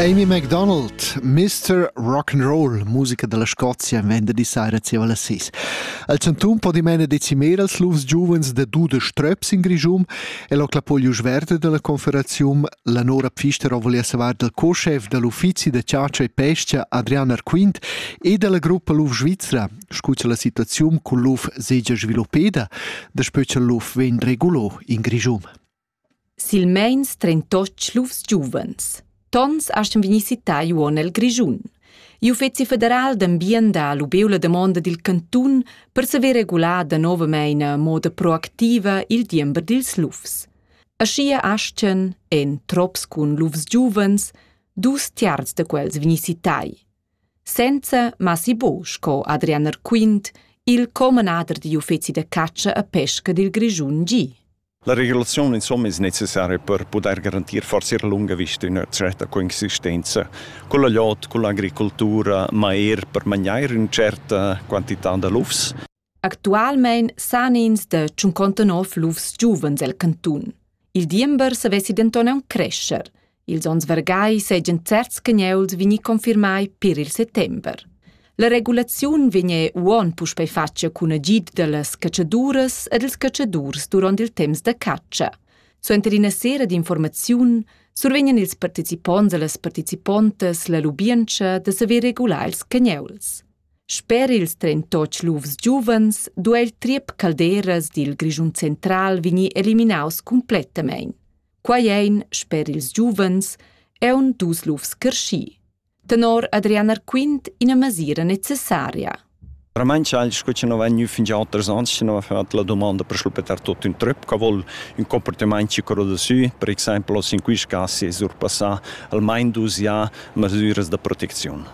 Amy MacDonald, Mr. Rock'n'Roll, musica dalla Scozia, venderdi sera zieva las 6. El chantun po dimena decimer als lufs giuvens da dudesch tröps in Grischum e lo clapoglius verde della confederazium la Nora Pfister volia savar dal co-chef dall'uffizi da ciacia e pescia Adrian Arquint e dalla gruppa Luf Svizra, scucha la situaziun cun luf segia sviluppeda, daspö cha luf vegn regulo in Grischum. Silmeins trentotg lufs giuvens. Tons astgan vegnir cittai uonn el Grischun. I'Uffeci federal d'ambient ha lubeu la damonda dil cantun per saver regular danovamein a moda proactiva il diember dils lufs. Aschia astgan, en trops cun lufs giuvens, dus tiarz da quels vegnir citai. Senza Massi Bo sco Adrian Erquint, il comanader digl uffeci da catscha a pesca dil Grischun gi. La regulaziun insomma es necessaria per pudair garantir forsa ir a lunga vista üna tscherta coexistenza culla lot, culla agricultura, ma eir per magnair ün tscherta quantità da lufs. Actualmaing san ins da tschuncontanov lufs giuvens el cantun. Il diember savessi denton aunc crescher. Ils onns vargai seigien certs cagnuls vegni confirmai pir il settember. La regulaziun vegn uon puspei fatga cun agid dallas catschaduras e dals catschadurs duront il temps da catscha. Suenter ina sera d'informaziun survegnan ils participonts e las participontas la lubientscha da saver regular ils cagnuls. Sper ils 38 lufs giuvens duei il triep Calderas dil Grischun central vegnir eliminaus completamain. Quai ein, sper ils giuvens, aun dus lufs creschì. Tenor Adrian Arquint ina mesira necessaria. Veramente sco che non vegn fin già alters anni, se non ha la domanda per schlupetar tutto un trip, che vuol un comportamento ci corroda su, per esempio, in questi casi è sorpassà almeno dus ja mesiras da protezione.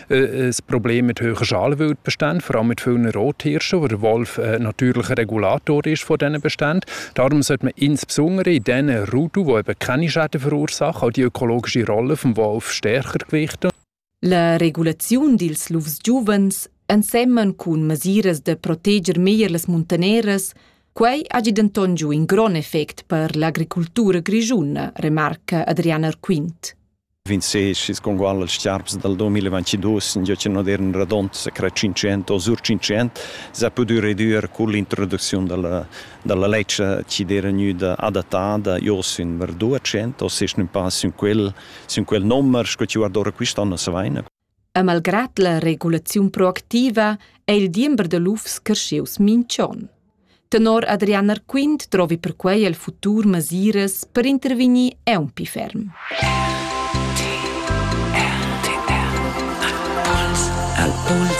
ein Problem mit hoher Schalwut bestehen, vor allem mit vielen Rothirschen, wo der Wolf ein natürlicher Regulator ist von diesen Beständen. Darum sollte man insbesondere in diesen Ruten, die eben keine Schäden verursachen, auch die ökologische Rolle des Wolfs stärker gewichten. La regulaziun dils lufs giuvens ensemen cun mesiras da proteger meglier las muntaneras, quei hagi denton giu in grond effect per l'agricultura grischuna, remarca Adriana Arquint. 26 con qual als charps dal 2022 giò chi non eran radond sa cra 500 o sur 500 s'ha pudü redüer cun l'introducziun da la da la ledscha chi'd era gnüda adattada jo sün var 200 o sesch ün pa sün quel sün quel nomer sco chi guardora quist'on as vaina. E malgrad la regulaziun proactiva è il diember da lufs creschius minch'on. Tenor Adrian Arquint trovi perquei el futur masiras per intervegnir aunc ferm.